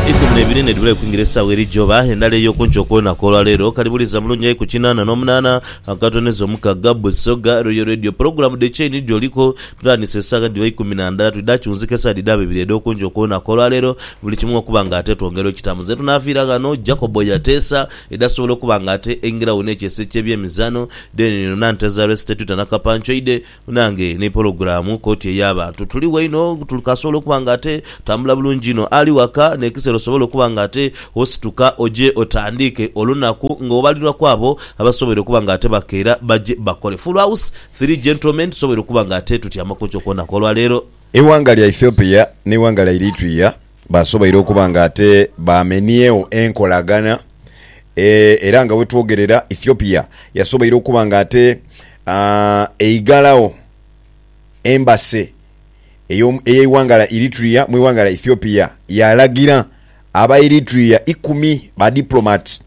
Eikumi n'ebiri nedhibula okwingira esaawa eri joba endala ey'okunkyo kw'olunaku olwa leero. Kali buliza bulungi aye ku kinaana n'omunaana akatondeza omukaga. Busoga Royal Radio pulogulaamu dhe Chain dh'oliku. Tutandise esaawa dhiba eikumi na ndala twidha kiwunzika esaawa dhidhaba ibiri edh'okunkyo kw'olunaku olwa leero buli kimu okuba nga ate twongera okitamu. Ze tunaafiira ghano Jacob yateesa edhasobola okuba nga ate eingira wo n'ekyeeso eky'ebyemizaano, Deen Nanteza Resty Twitter na Kapanchoide. Nange ni pologulaamu koti ey'abantu tuli waino tuli kasobola okuba nga ate tambula bulungi inho. Ali waka n'ekiseera osobola okuba nga ate osituka oje otandiike olunaku ng'obalirwa ku abo abasoboire okuba nga ate bakeera baje bakole. Full House, Three Gentlemen tusoboire okuba nga ate tutyamaku enkyo ku lunaku olwa leero. Eighanga lya Ethiopia n'eighanga lya Eritrea. Basoboire okuba nga ate baameniegho enkolagana era nga wetwogerera Ethiopia yasoboire okuba nga ate eighalagho embassy ey'eighanga lya Eritrea mu ighanga lya Ethiopia yaalagira Abaeritrea ikumi ba diplomats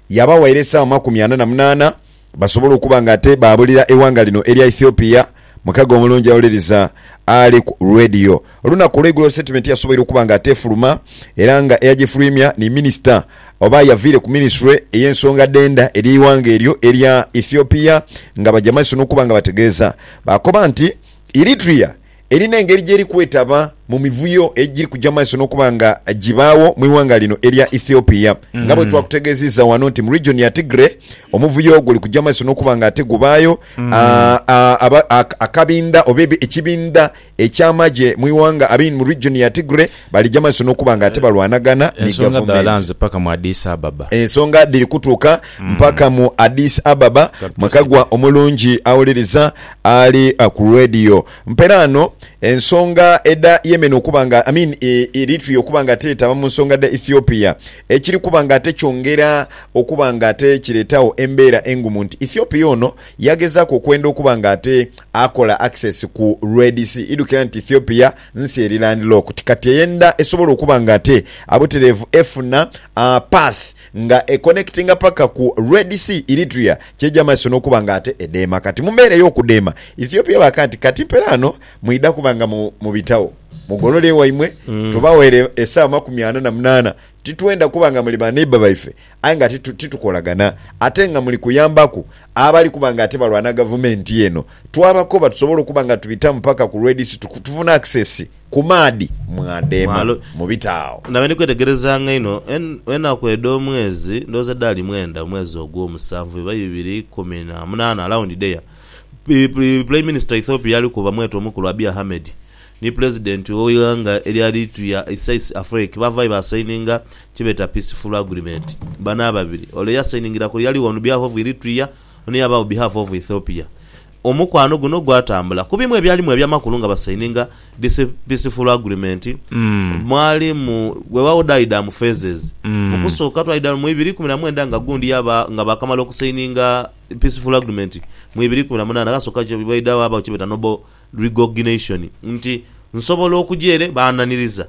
yaabawaire esaawa makumi ana na munaana basobola okuba nga ate baabulira eighanga lino erya Ethiopia mukago omulungi awuliriza ali ku Radio. Olunaku olweigulo sitetimenti yasoboire okuba nga ate efuluma era nga eyagifuluimya ni minisita oba yaviire ku minisitule ey'ensonga dh'enda edh'eighanga eryo erya Ethiopia nga baja maiso n'okuba nga bategeeza baakoba nti Eritrea Eri n'engeri gyeri kwetaba mu mivuyo egiri kuja mu maiso n'okuba nga gibaagho mu ighanga lino erya Ethiopia. Nga bwe twakutegeeziza ghano nti mu region ya Tigray omuvuyo guli kuja mu maiso n'okuba nga ate gubaayo, akabinda oba ekibinda eky'amagye mu ighanga abiri mu region ya Tigray balija mu maiso n'okuba nga ate balwanagana ni gavumenti. Ensonga dhiri kutuuka mpaka mu Addis Ababa, mwekagwa omulungi awuliriza. Ali ku radio mpera ano ensonga edha Yemen okuba nga I mean Eritrea okuba nga teetaba mu nsonga dha Ethiopia ekiri kuba nga ate kyongera okuba nga ate kireetawo embeera engumu nti Ethiopia ono yagezaaku okwenda okuba nga ate akola access ku Red Sea idhukira nti Ethiopia nsi eri landlocked kati eyenda esobola okuba nga ate abutereevu efuna path nga e connectinga paka ku Red Sea, Eritrea kyeja maiso n'okuba nga ate edheema. Kati mu mbeera ey'okudheema, Ethiopia baaka nti, Kati mpela ghano mwidha kuba nga mubitagho, mugolole ewaimwe, tubaweere esaawa makumi ana na munaana. Titwenda kuba nga muli ba neighbour baife aye nga ate titukolagana, ate nga muli kuyambaku abali kuba nga ate balwana gavumenti eno. Twabakoba tusobole okuba nga tubitamu paka ku Red Sea tufune access. Ku maadhi mwadeema mu bitaagho. Nabe ndi kwetegerezanga inho enaku edh'omwezi, ndowooza dhaali mwenda, omwezi ogw'omusanvu, oba ibiri ikumi na munaana, around there, Prime Minister wa Ethiopia yali kuba mwete omukulu Abiy Ahmed ni Pulezidenti w'eighanga eryali lituya Isais Afwerki baavaayo baasayininga kyebeeta Peaceful Agreement. Bano ababiri, ole eyasayiningira ku yali on behalf of Eritrea, ono yaaba on behalf of Ethiopia. Omukwano guno gwatambula ku bimu ebyalimu eby'amakulu nga basaininga Peaceful Agreement mwali mu weewagho dhaidha mu phases. Mu kusooka twaidha mu ibiri ikumi na mwenda nga gundi yaba nga baakamala okusaininga Peaceful Agreement mu ibiri ikumi na munaana ghasooka kye baidha ghabaagho kye beeta Noble Recogination nti, Nsobola okuja ere, baananiriza,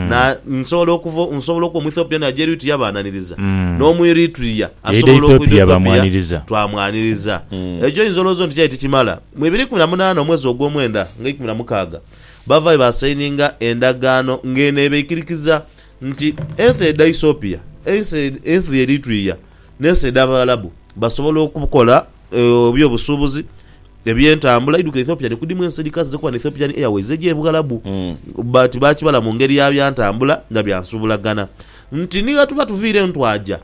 na, nsobola okuva, nsobola okuba Omwethiopia naja Eritrea, baananiriza, n'Omweritrea Yaidha asobola okuja Ethiopia, Ethiopia, bamwaniriza. twamwaniriza. Ekyo oinza olowooza oti kyali tikimala. Mu ibiri ikumi na munaana omwezi ogw'omwenda nga eikumi na mukaaga, baavaayo baasayininga endagaano ng'eno ebaikirikiza nti ensi edha Ethiopia, ensi, ensi edha Eritrea, n'ensi edh'Abaarabu basobola okukola, Ebyobusuubuzi, ebyentambula, eidhuka Ethiopian ekudhimu ensi edhikaze dhiri kuba n'Ethiopian Airways egya e Bughalabu but baakibala mu ngeri ya bya ntambula nga bya nsubulagana nti ni ghetuba tuviira eno twaja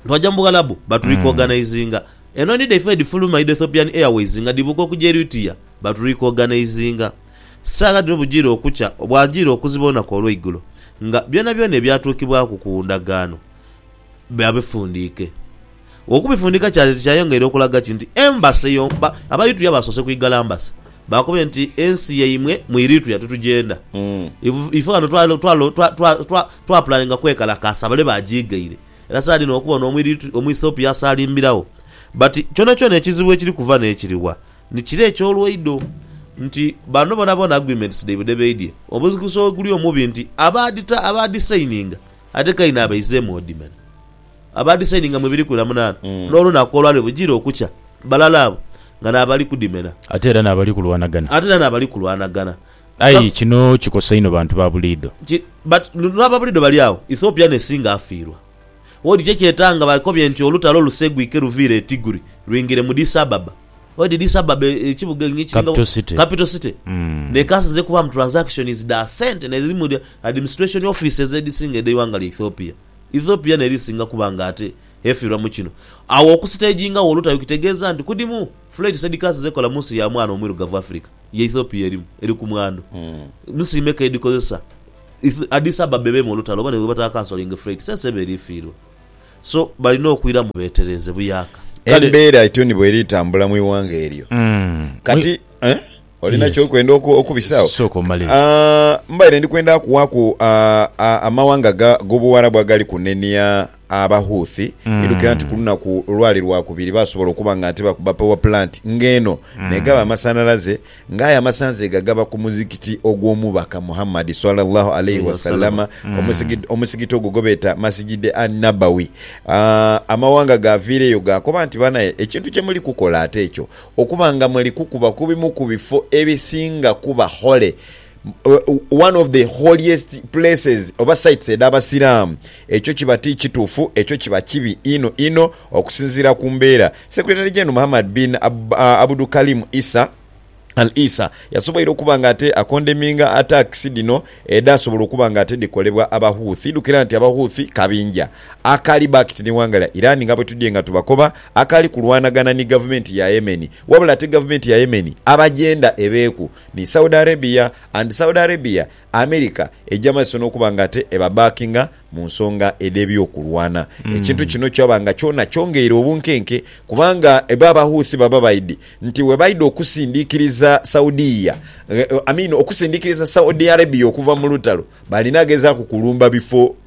twaja mu Bughalabu baturikoganaizinga. Enhonhi dhaife edhifuluma edha Ethiopian Airways nga dhibuuka okuja Eritrea baturikoganaizinga. Saagha dhino bugiire okukya bwagiire okuziba olunaku olweigulo nga byonabyona ebyatuukibwaku ku ndagaano babifundiike. Okubifundiika kyali ti kyayongeire okulaga ki nti Embassy yo, ba, Abaeritrea baasoose kwigala Embassy. Baakoba nti, Ensi yaimwe mu Eritrea titugyenda. Iv, Ife ghano twa, twa, twa, twa, twa, twapulaninga kwekalakaasa bale baagiigaire. Era saadi ino okuba ono Omueritrea, Omuethiopia asaalimbiragho. But, kyonakyona ekizibu ekiri kuva n'ekiri wa, ni kire eky'olwaido nti bano boonaboona agreements dhaibwe dhe baidye, omuzikiso weguli omubi nti abaadhi, abaadhi signinga Ate Kaini abaizeemu odimana abaadisaininga mu ebiri kwira munaana, n'olunaku olwali lugiire okukya, balala abo nga n'abali kudimena. Ate era n'abali kulwanagana. Ate era n'abali kulwanagana. Aye kino kikosa inho bantu ba buliidho. Ki, but n'aba buliidho bali agho. Ethiopia n'esinga afiirwa. Wodi ki ekyetanga bakobye nti olutalo luseegwike luviire e Tigri lwingire mu Addis Ababa? Edhidi sababu ekibuga enyo ekiringa capital city nekasinze kubaamu transactions dha sente n'edhiri mu administration offices edhisinga edh'eighanga lya Ethiopia. Ethiopia n'eri esinga kuba nga ate efirwa mu kino. Agho okusitagingagho olutayo kitegeeza nti kudhimu flights edhikasinze kola mu nsi ya mwana omwirugavu Africa ye Ethiopia erimu eri ku mwandu. Nsi meka edhikozesa Addis Ababa ebeemu olutalo oba ni bwebatakansolinga freight sense eba eri efiirwa. So balina okwira mu beetereeze buyaaka. Kale. Embeera etyo ni bw'eri etambula mu ighanga eryo. Kati, eh, olina Yes. ky'okwenda oku- okubisaawo? Sooka omalire. Ah, mbaire ndi kwenda kuwaaku ah, ah, amawanga ga- g'Obuwarabu agali kunenia Abahouthi, idhukira nti ku lunaku olwali Lwakubiri baasobola okuba nga ate bakuba power plant ng'eno n'egaba amasanhalaze, Ng'aye amasanze ghagaba ku Muzikiti ogw'Omubaka Muhammad, swalla Llaahu alaihi wasallama, omusigid, omusigiti ogwo gwe beeta Masjid an-Nabawi. Amawanga gaaviireyo gaakoba nti, Banae, ekintu kye muli kukola ate ekyo, okuba nga muli kukuba ku bimu ku bifo ebisinga kuba holy, one of the holiest places oba sites edh'Abasiraamu, Ekyo kiba ti kituufu, ekyo kiba kibi inho inho okusinziira ku mbeera. Secretary General Muhammad bin Abdukarim Issa Al Issa yasoboire okuba nga ate akondeminga attacks dhino edhasobola okuba nga ate dhikolebwa aba Houthi. Idhukira nti aba Houthi kabinja akali backed ni ghanga lya Iran nga bwetudhye nga tubakoba akali kulwanagana ni gavumenti ya Yemen wabula ate gavumenti ya Yemen abajenda ebeeku ni Saudi Arabia and Saudi Arabia America eija maiso n'okuba nga ate ebabaakinga mu nsonga edh'eby'okulwana. Ekintu kino kyaba nga kyona kyongeire obunkenke kubanga bo Abahouthi baba baidhi nti bwe baidha okusindiikiriza Saudia, I mean okusindiikiriza Saudi Arabia okuva mu lutalo, baalinagezaaku kulumba bifo.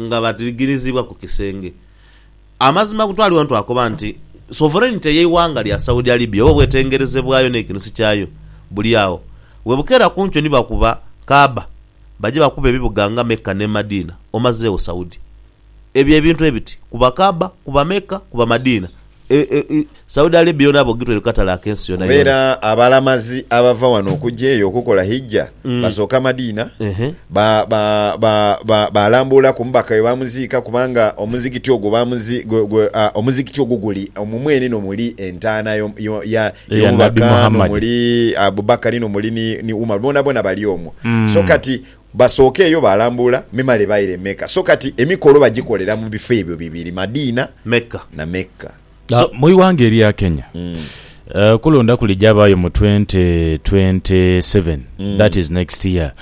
nga badhigiriziibwa ku kisenge. Amazima agutwalibwa nti twakoba nti sovereignty ey'eighanga lya Saudi Arabia oba obwetengereze bwayo n'ekinusu kyayo buli agho. Bwebukeera ku nkyo ni bakuba Kaaba, baja bakuba ebibuga nga Mecca ne Madina, omazeegho Saudi. Ebyo ebintu ebiti, kuba Kaaba, kuba Mecca, kuba Madina, Saudi Arabia yona bogitwere ku katale ak'ensi yona yona. Era abalamazi abava wano okuja eyo okukola Hijja basooka Madina, baalambuula ku Mubaka we baamuziika kubanga omuzikiti ogwo omuzikiti ogwo guli omwo mwene n'omuli entaana y'Omubaka n'omuli Abu Bakari n'omuli ni Umar, boonaboona bali omwo. So kati Basookeeyo baalambuula memale baira e Mecca. So kati emikolo bagikolera mu bifo ebyo bibiri, Madina na Mecca. So mu ighanga erya Kenya, okulonda kuli gyabaayo mu twenty twenty seven, that is next year,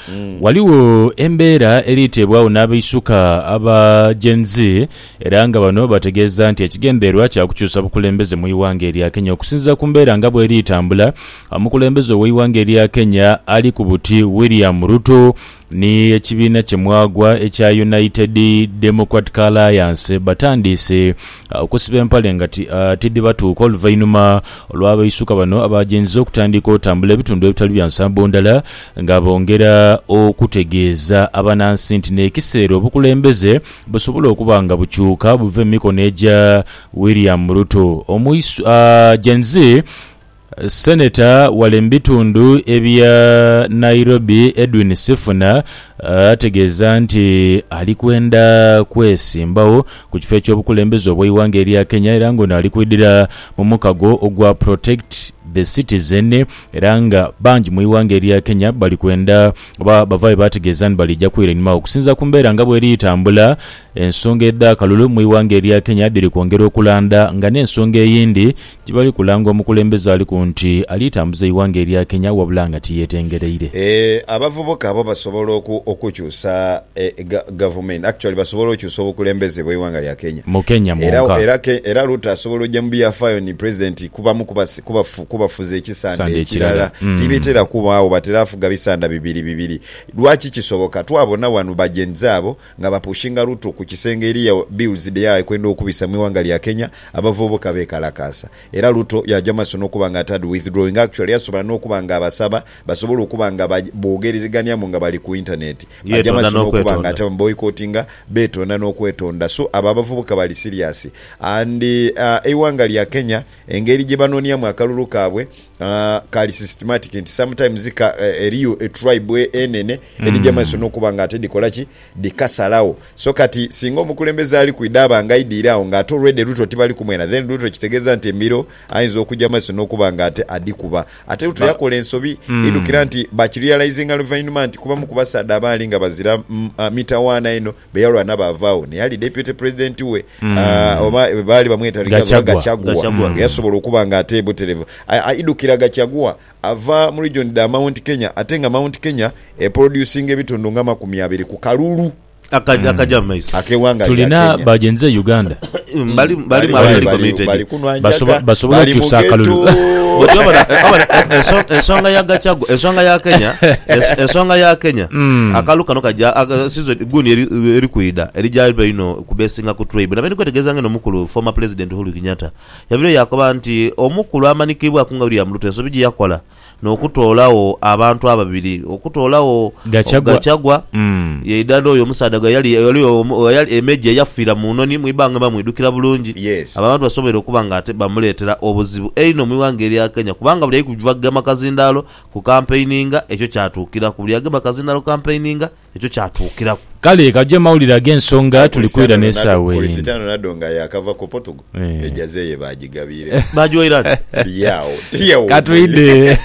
ghaligho embeera eri teebwagho n'abaisuka aba Gen Z era nga bano bategeeza nti ekigendererwa kya kukyusa bukulembeze mu ighanga erya Kenya okusinziira ku mbeera nga bweri tambula. Omukulembeze ow'eighanga erya Kenya ali ku buti William Ruto ni ekibiina kye mwagwa ekya United Democratic Alliance batandiise okusiba empale nga tidhibatuuka oluvainhuma lwa baisuka bano abaajenziza okutandika otambula ebitundu ebitali bya nsambo ndala nga bongera okutegeeza abanansi nti nekiseera obukulembeze busobola okuba nga bukyuka buve mu mikono egya William Ruto. Gen. Senator wale mu bitundu ebya Nairobi Edwin Sifuna ategeeza nti ali kwenda kwesimbawo ku kifo eky'obukulembeze obw'eighanga erya Kenya era nga ono ali kwidhira mu mukago ogwa Protect the Citizen era nga bangi mu ighanga erya Kenya bali kwenda oba bavayo bategeeza ni balija kwira inhuma okusinzira ku mbeera nga bweri tambula ensonga edh'akalulu mu ighanga erya Kenya dhiri kwongera okulanda nga n'ensonga eyindi Tibali kulanga omukulembeze aliku nti ali tambuza eighanga erya Kenya wabula nga tiyetengereire. Abavubuka bo basobola okukyusa gavumenti actually basobola okyusa obukulembeze bweighanga lya Kenya. Mu Kenya mwonka. Era Ruto asobola oja mu byafayo ni president kubamu kubafuzi ekisanda ekirala. Tibitera kubagho batera fuga bisanda bibiri bibiri. Lwaki kisoboka? Twabona wano ba Gen Z abo Nga bapushinga Ruto ku kisenge eriyo bills dhe yakwenda okubisa mu ighanga lya Kenya, abavubuka bekalakaasa era Ruto yaja mu maiso n'okuba nga atadhi withdrawing. Actually yasobola n'okuba nga abasaba basobole okuba nga boogerezeganiamu nga bali ku internet. Aja mu maiso n'okuba nga ate abamu boycottinga, beetonda n'okwetonda. So abo abavubuka bali serious and eighanga lya Kenya engeri gye banoniamu akalulu kaabwe, Kali systematic nti sometimes ka, eh, eriyo etribe enene edhija maiso nokuba nga ate dhikola ki dhikasalagho so kati singa omukulembeze ali kwidha aba nga aidiire agho nga ate already Ruto tibali kumwena then Ruto kitegeza nti embiro ayinza okuja maiso nokuba nga ate adhikuba ate Ruto Ba- yakola ensobi idhukira nti bakirealizinga luvainhuma nti kubamu kubasaadha abaali nga bazira mm, ah, mitawaana eno be yalwana baavaagho naye ali Deputy President we ah, oba baali bamweta Rigathi oba Gachagua. Gachagua Gachagua. nga yasobola okuba nga ate buterevu A- aidhukira Gachagua ava mu region dha Mount Kenya ate nga Mount Kenya eproducinga ebitundu nga amakumi abiri ku kalulu Aka- akaja mu maiso. ak'eghanga lya Tulina Kenya. bagenze e Uganda Bali- bali mu abali- committed. bali kunwa Basobo- njaga, basobola bali okyusa mu akalulu. ghetto. Bw'otyo obona- obona, eh, enso- ensonga ya gacagu ensonga ya kenya ens- ensonga ya kenya Mm. akalu kano kaja aka- season guni eri- eri kwidha erija iba ino kubesinga ku tribe nabeni kwetegereza ngeno omukulu former president uhuru kenyatta yavirayo yakoba nti omukulu amanikibwaku nga william ruto ensobi gyeyakola nokutoolagho abantu ababiri okutoolagho Gachagua. Gachagua Mm. yaidha n'oyo omusaadha ghe yali yali omu- ghe yali e Meja eyafiira mu noni mu ibanga mba mwidhukira bulungi. Yes. Abo abantu basoboire okuba nga ate bamuleetera obuzibu einho mu ighanga erya Kenya kubanga buli ali kugema kazindaalo kukampeininga ekyo kyatuukiraku buli agema kazindaalo kukampeininga ekyo kyatuukiraku. Kale kaje mawulire ag'ensonga tuli kwidha n'esaawa eye. Kurisitano nadho nga yaakava ku Portugal, ejaze ye baajigabiiregho. Baajiwaire ani? Biri agho, tiri agho. Ka twidhe.